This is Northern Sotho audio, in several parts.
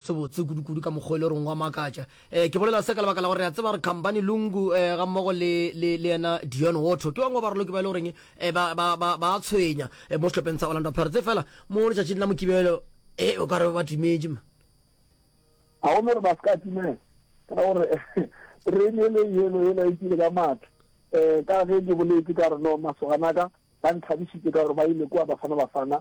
sebotse kudukudu ka mokgwa e le goreng wa makatša. Um ke bolela se ka lebaka la gore re a tseba gore khampani lungu um ga mmogo le le le yena dion water ke bangwe ba baraloki ba e le goreng um ba ba ba ba a tshwenya um mo sehlopeng sa orlando pirates e fela mo letšatšing la mokibelo e o ka re ba timetše ma ga gone gore ba se ka timela ka gore terene e le yelo e laetile ka matla um ka ge ke boletse ka re no masoganaka ba nthabisitse ka gore ba ile kua bafana bafana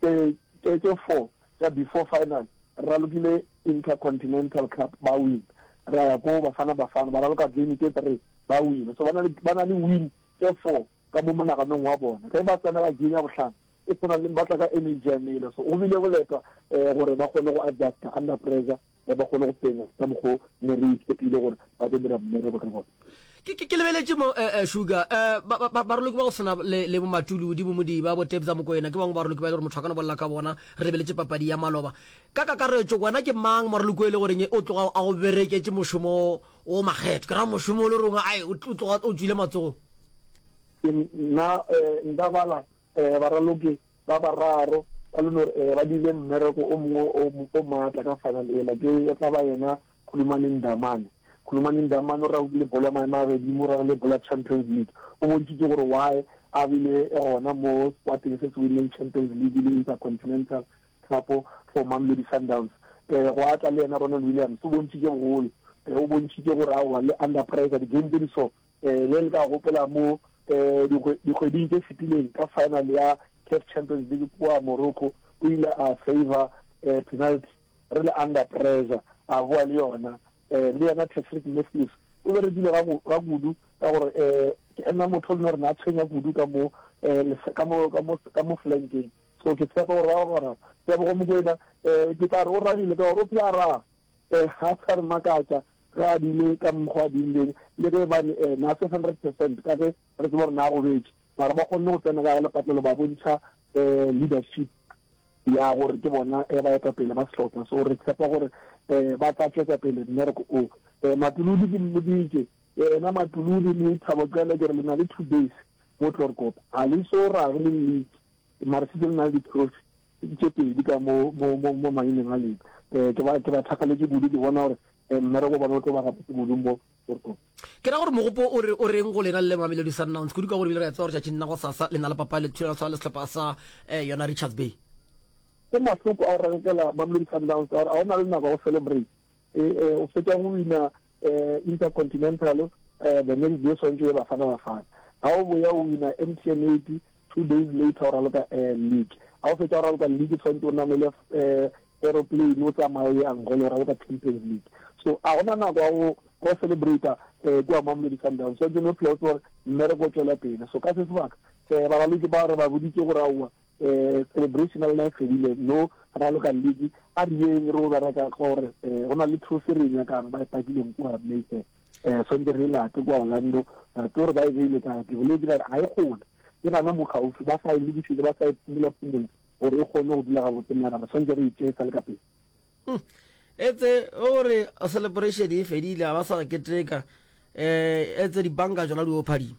tše tše tše four tša before final, re ralokile Intercontinental Cup ba win, ra ya ko Bafana Bafana ba raloka game tše three ba win, so ba na le ba na le win tše four ka mo monaganong wa bona. Ge ba tsenela game ya bohlano e tshwana le ba tla ka energy ya mele, so go bile boletwa gore ba kgone go adjuster under pressure. ga ba kgone go penya ka mokgwa o ne re itshepile gore ba tlo dira mmereko ka gona. Ke, ke, ke lebeletše mo eh, eh, Sugar eh, ba, ba, ba- baroloki ba go swana le, le bomatuludi bomodiba bo tebza mokoena ke bangwe baroloki ba e le gore motho a ka no bolela ka bona re lebeletše papadi ya maloba ka kakaretšo wena ke mang moraloki o e le goreng o tloga a go bereketše mošomo o makgetho ke ra mošomo o le rongwe ai o tl- o tloga o tswile matsogong Ke nna eh, nka bala Ee, baraloki ba bararo ba Lunor ee ba dirile mmereko o mongwe o, o maatla ka final ela. Ke tla ba yena Khulumani Ndamane. Khulumani Ndamane o raogile bolo ya maemo a godimo, o raogile bolo ya Champions League. O bontšhitše gore why a bile gona mo sekwateng se se winileng Champions League le Intercontinental Cup for Mamelodi Sundowns. Ee, gwa tla le yena Ronwen Williams. O bontšhitše bogolo. Ee, o bontšhitše gore aowa, le under pressure, di-game tše di so, Eh, le le ka gopola mo eh, dikgwe- dikgweding tše fetileng ka final ya CAF Champions League kua Morocco, o ile a saver eh, penalty re le under pressure, a boa le yona. Eh, le yena Patrick Matthews o be re dile ga go- ga kudu ka gore eh, ke ena motho o leng gore ne a tshwenya kudu ka mo eh, lef- ka mo- ka mo- ka mo flankeng. So ke tshepa gore ba gona Tebogo Mokwena, eh, ke tla re o ragile ka gore o phela a raga. Ee, ga a sa re makatša ge a bine ka mokgwa a binileng, le ge e ba ne ee, na se hundred percent ka ge re tseba gore na a robetše. Mara ba kgonne go tsena ka lepatlelo ba bontšha um leadership ya gore ke bona um baetapele ba sehlopha. So re tshepa gore um ba tla tšwetša pele mmereko o. Um Matuludi ke mmoditše, Yena Matuludi le Thabo Xele ke re le na le two days mo Tloorkop, ga le eso rage le league. mara se tsene na le diprofi tše pedi ka mo mo mo mo maineng a leng eh ke ba ke ba thakaletše kudu ke bona gore eh, mmereko bona o tlo ba gapetse kudu mo ke ra gore mogopo o re o reng go lena le mamelodi sundowns kudu ka gore bile re ya tsewa gore tšatšing nna go sasa le na le papa le thulana tshwana le setlhopha sa eh, yona richards bay ke mahloko a o rankela mamelodi sundowns gore a o na le nako ya go celebrate eh, eh, o fetsa go wina eh, Intercontinental, eh, the next day swantšo ye Bafana Bafana. Ga o boya o wina MTN 8, two days later o raloka eh, league. Ga o fetša o raloka league swantšo o namele eh, aeroplane o tsamaye o ye Angola o raloka Champions League. So a gona nako ya go go celebrate eh kwa Mamelodi Sundowns so jeno phela o tsore mmereko o tswela pele so ka se sebaka eh ba raloke ba re ba boditse go raua eh, celebration ya lona e fedile no raloka ledi a re yeng re o bereka gore eh, go na le thuso re e nyakang ba e pakileng kua mayfair um sonte re e late kua orlando re tse gore ba e beile ka ke boledi ba re ga e gole ke gana mo gaufi ba sa e lokišetse ba sa e phomola phomola gore e kgone go dula gabotse mara re swantse re itsee sa le ka pele hmm. etse o re celebration e fedile ga ba sa keteka um etse dibanka tsona di o phadima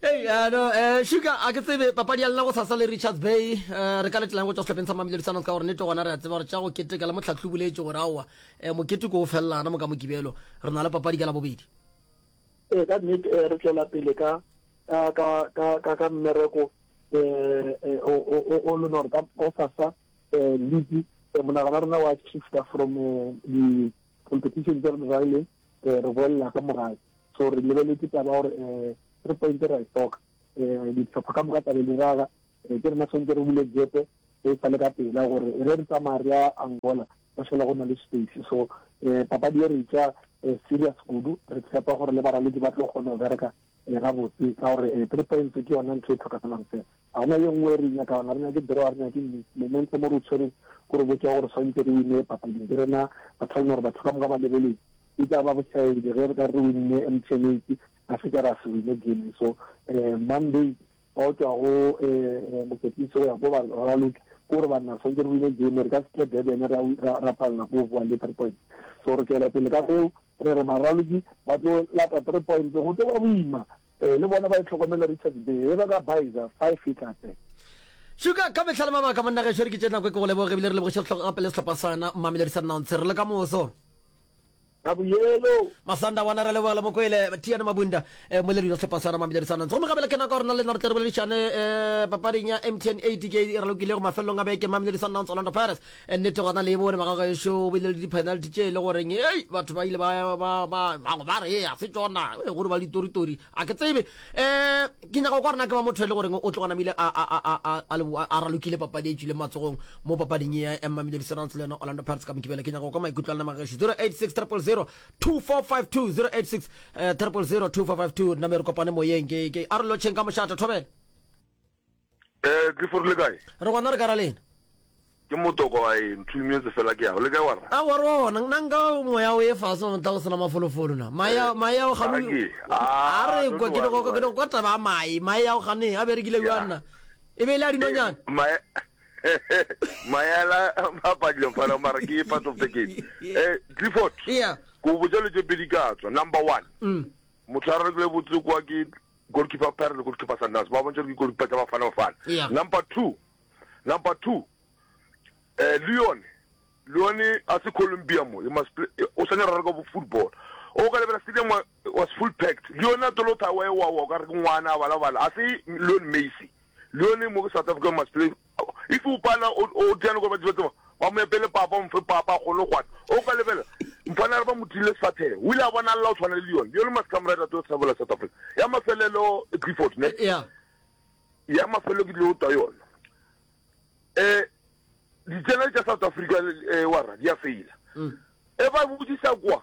Hey, uh, no, uh, Sugar, a ke tsebe papadi ya lena go sasa le Richards Bay uh, re ka letlang go tšwa sehlopeng sa Mamelodi Sundowns ka gore nete gona re a tseba gore tša go keteka le motlhatlhi boletše gore aowa uh, eh, mokete ko o felelana mo ka mokibelo re na le papadi ka la bobedi ee ka nnete eh, re tswela pele ka ka mmereko um o leng gore ka sasa um league monagana rona wa shifta from competition tsa rona jale eh, re boelela ka morae so re lebeletse taba gore um eh, three point ra e hloka um eh, ditlhopha ka moka tlabe di raga um ke rena tshwanetse re bule jepe e sale ka pela gore re re tsamaya re ya angola ba šola go na le space so um papadi e re tsa serious kudu re tshepa gore le baraledi ba tlo kgona go bereka gabotse ka gore three points ke yona ntho e tlhokagalang fela Ga gona yo nngwe e re e nyakalang. Ga re nyake draw, ga re nyake eng. Momentum o re o tshwereng ke gore botša gore swantse re winne papading. Ke rena ba tla gore batho ka moka ba lebeleng. E tla ba bošaedi ge re ka re re winne MTN eight ra fetša ra se winne game. So Monday ba o tšwa go Moketisi go ya ko Raloke ke gore banna re swantse re winne game. Re ka se tle Durban ra palela ko go bowa le three points. So re tšwela pele ka seo Re re baraloki ba tlo lata three points go tlo ba boima le bona ba e tlhokomela Richards Bay e ba ka Baiza five e tla tsena. Sugar ka mehla le mabaka monna gešo re ke tše nako e ke go leboge ebile re lebogiše sehlong gape le sehlopha sana Mamelodi Sundowns re le ka moso ka boyelo masanda wana re leboga le mokwele tiane mabunda eh, mo le rina sehlopha sana Mamelodi Sundowns gomme gape le kena ka gore na le nna re tle re boledišane eh, papading ya mtn 80 ke re lokilego mafelelong a beke Mamelodi Sundowns Orlando Pirates nnete gona le e bone bagagešo o bile le di-penalty tše e le goreng ei batho ba ile bango ba re a se tsona e gore ba ditoritori a ke tsebe um ke nyaka kwa rena ke ba motho e le goreng o tlogonamile a ralokile papadi e tswile matsogong mo papading e ya emmamile diserants le yona orlando parts ka mokibele ke nyaka kwa maikutlo a lena magagešo 086 000 2452 086 000 2452 nna me re kopane moyeng ke arolotšheng ka mošata thobela Eh, Clifford le kae? Re gona re ka ra lena. Ke motoko a e nthumetse fela ke yago. Le kae wa ra? A gore wa bona, nna nka moya o e fase wa motla go sena mafolofolo na. Mae ya, mae ya go gano. Ake. A re kwa, ke doko, ke doko kwa taba a mae. Mae ya go gane, a berekile bjwa nna. E be e le a dinonyana. Eh, mae, mae a la, mapa dilo fana, mara ke part of the game. Eh, Clifford. Yeah. Ko botsa le tse pedi ka tswa. Number one. Mm. Motho a re le botse kwa ke Goalkeeper Parry le goalkeeper Sundowns ba bontša gore ke goalkeeper tša Bafana Bafana. Yeah. Number two, number two, eh, Leon, Leon a se Colombia mo, he must play, eh, o sanya rara ka football. O ka lebela stadium wa- was full packed. Leon a tolo thawa e wawa, o ka re ke ngwana a balabala. A se Leon Messi. Leon mo ke South Africa must play If o pala o o tiyane kwa batho ba tseba ba mo epele papa o mfe papa a kgone go kgwana. O ka lebela mfana a re ba mo tile sefathego o ile a bona lla o tshwana le Leon. Leon Maskamrad a tlo sabela South Africa. Ya mafelelo Clifford ne. Yeah. Ya mafelelo ke dilo twa yona. Eh di channel tsa South Africa eh wa ra di a faila. Mm. E ba botisa kwa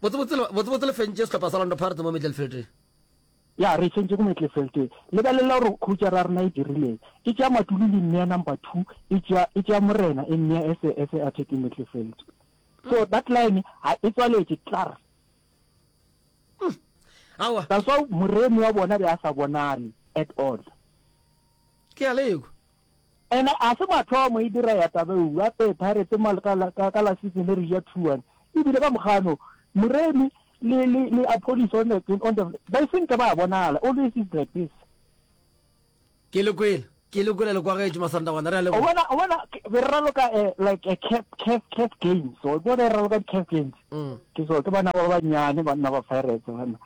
Botsebotse le fentše sehlopha sa Orlando Pirates mo Mittelfeldeng. Ya, re fentše go Mittelfeldeng. Lebelela gore khutšara ya rena e dirileng. E tšea Matulu le mmea number two, e tšea, e tšea Morena e mmea as a, as a attacking Mittelfeld. So that line ha e tswaletše tlar. Aowa. That's why moremi wa bona be a sa bonale at all. Ke a le ekwa. And a se mathomo e dira ya taba eu a pay pirates mo ka la ka la sitse le re ja thuan e bile ba mogano muremi le le le a police on the on the ba seng ka ba bonala always is like this ke le kwela ke le kwela le kwa gaetso masanda gona re a le bona bona be re ralo ka eh, like a cap cap cap games so go re ralo ka cap games mm. ke so ke bana ba ba nyane ba nna ba pirates bana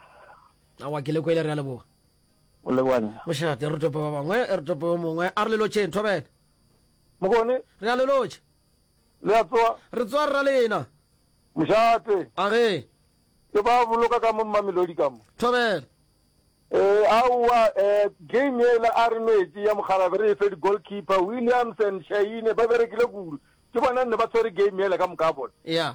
awa ke le kwela re a le bona O leboga nna. Mošate, re tope ba bangwe, re tope yo mongwe. A re le lotšeng, Thobela. Mokone. Re a le lotšha. Le a tsoa? Re tsoa rra lena. Mošate. A re. Ke ba boloka ka mo Mamelodi ka mo. Thobela. Eh, aowa, eh, game yela a re nwetše ya mokgalabje re e fe di-goalkeeper, Williams and Shahine, ba berekile kudu. Ke bona nne ba tshwere game yela ka moka bona. Yeah.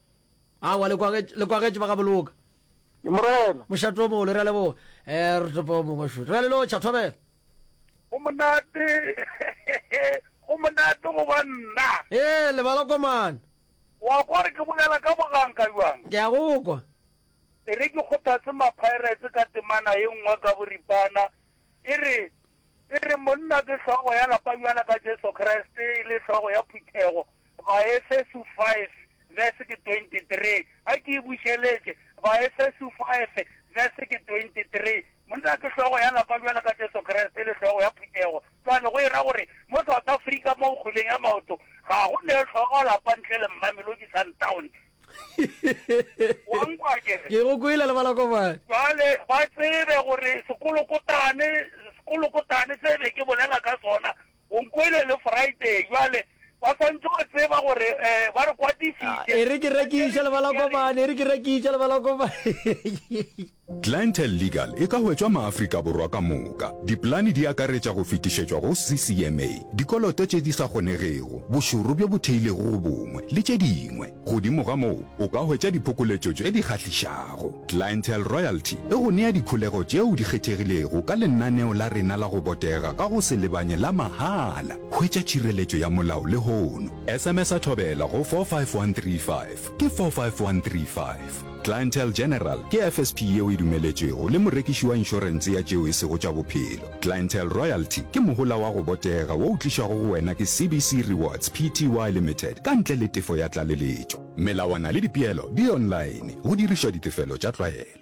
Awa, le kwagetše, le kwagetše ba ga Boloka. Morena. Mošate o mogolo, re a leboga. E, re topa o mongwe šut. Re a le lotšha, thobela. Go monate, go monate go ba nna. E, lebala kwa mane. Wa kwa re ke bolela ka boganka bjang? Ke a go kwa. E re ke kgothatse ma-Pirates ka temana ye nngwe ka boripana, e re, e re, Monna ke hlogo ya lapa bjalo ka Jesu Kriste e le hlogo ya phuthego, Baefeso 5, vese ke 23, A ke e bušeletše, Baefeso 5, vese ke 23, Monna ke hlogo ya lapa bjalo ka Jesu Kriste e le hlogo ya phuthego. Cwale go e ra gore mo South Africa mo kgweleng ya maoto ga go ne hlogo lapa ntle le Mamelodi Sundowns. Wa nkwa ke re? Ke go kwele le balakobane. Cwale ba tsebe gore sekolokotane, sekolokotane se be ke bolela ka sona O nkwele le Friday bjale. Ba swanetše go tseba gore ba re kwatišitše. E re ke rekiša le ba la kopane, e re ke rekiša le ba la kopane. Clientele Legal e ka hwetšwa Maafrika Borwa ka moka. Dipolane di akaretša go fetišetšwa go CCMA, dikoloto tše di sa kgonegego, bošoro bjo bo theilego go bongwe, le tše dingwe. Godimo ga moo, o ka hwetša diphokoletšo tše di kgahlišago. Clientele Royalty e go nea dikholego tšeo di kgethegilego ka lenaneo la rena la go botega ka go se lebanye la mahala. Hwetša tšhireletšo ya molao lehono. SMS-a Thobela go 45135, ke 45135. Clientele General ke FSP yeo e dumeletšwego le morekiši wa inšorense ya tšeo e sego tša bophelo. Clientele Royalty ke mohola wa go botega wo o tlišwago go wena ke CBC Rewards Pty Limited ka ntle le tefo ya tlaleletšo. Melawana le dipeelo di online go dirišwa ditefelo tša tlwaelo.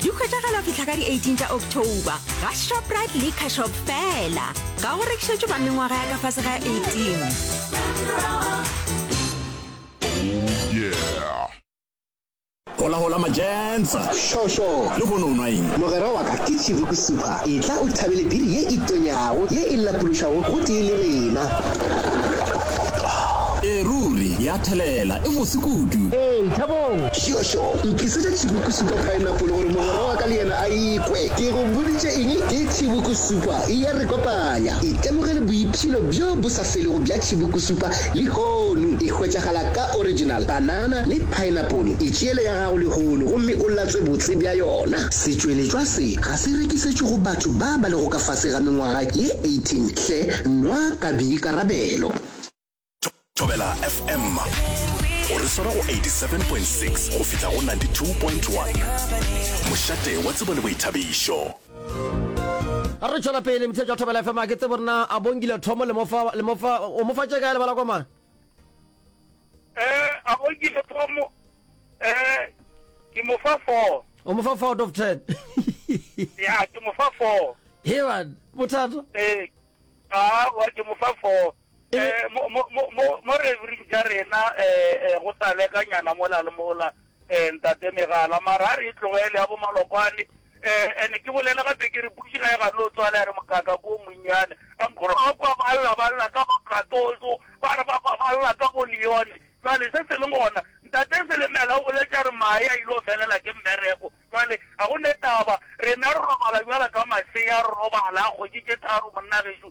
Di hwetšagala fihla ka di 18 tša October ga Shoprite Liquor Shop fela. Ga go rekišetšwe ba mengwaga ya ka fase ga 18. Hola hola majensa. Sho sho. Le go no nwa eng? Mogera wa ka ke Chibuku Super. Etla o thabele biri ye e tonyago, ye e lapološago go tee le rena. E ruri, ya thelela, e mose kudu. Ee, Thabong. Tšhošo, Ntlisetša tšhibukusupa paenapole gore mogwera wa ka le yena a e kwe. Ke go boditše eng? Ke tšhibukusupa. E a re kopanya. Itemogele boipshino bjo bo sa felego bja tšhibukusupa lehono. E hwetšagala ka original banana le paenapole. Itšeele ya gago lehono gomme o latswe botse bja yona. Setšweletšwa se ga se rekisetšwe go batho ba ba lego ka fase ga mengwaga ye 18 hle, nwa ka boikarabelo. thobela fm o re swara go 87.6 go fihla go 92.1 mošate wa tsebo le boithabišo ga re tšwela pele motse jwa thobela fm a ke tsebo rena a bongile thomo le mofa le mofa o mofa tše kae lebala komana eh a bongile thomo eh ke mofa 4 o mofa 4 out of 10 ya ke mofa 4 hewan bothata eh a wa ke mofa 4 E be. Mo, mo, mo, mo, mo re ring tša rena, um, go taleka nyana mola le mola, um, Ntate Megala. Mara a re e tlogele ya bo Malokwane. Um, and ke bolela gape ke re Buši ga e gane o tswale ya re mokakaka o monnyane. A nkore wa kwa ba lla, ba lla ka bo Katozo, ba re ba kwa ba lla ka bo Leone. Jwale se se leng gona, Ntate Selemela o boletše a re Mae a il'o felela ke mmereko. Jwale ga go ne taba, rena re robala bjalo ka masea, re robala kgwedi tše tharo monna gešo.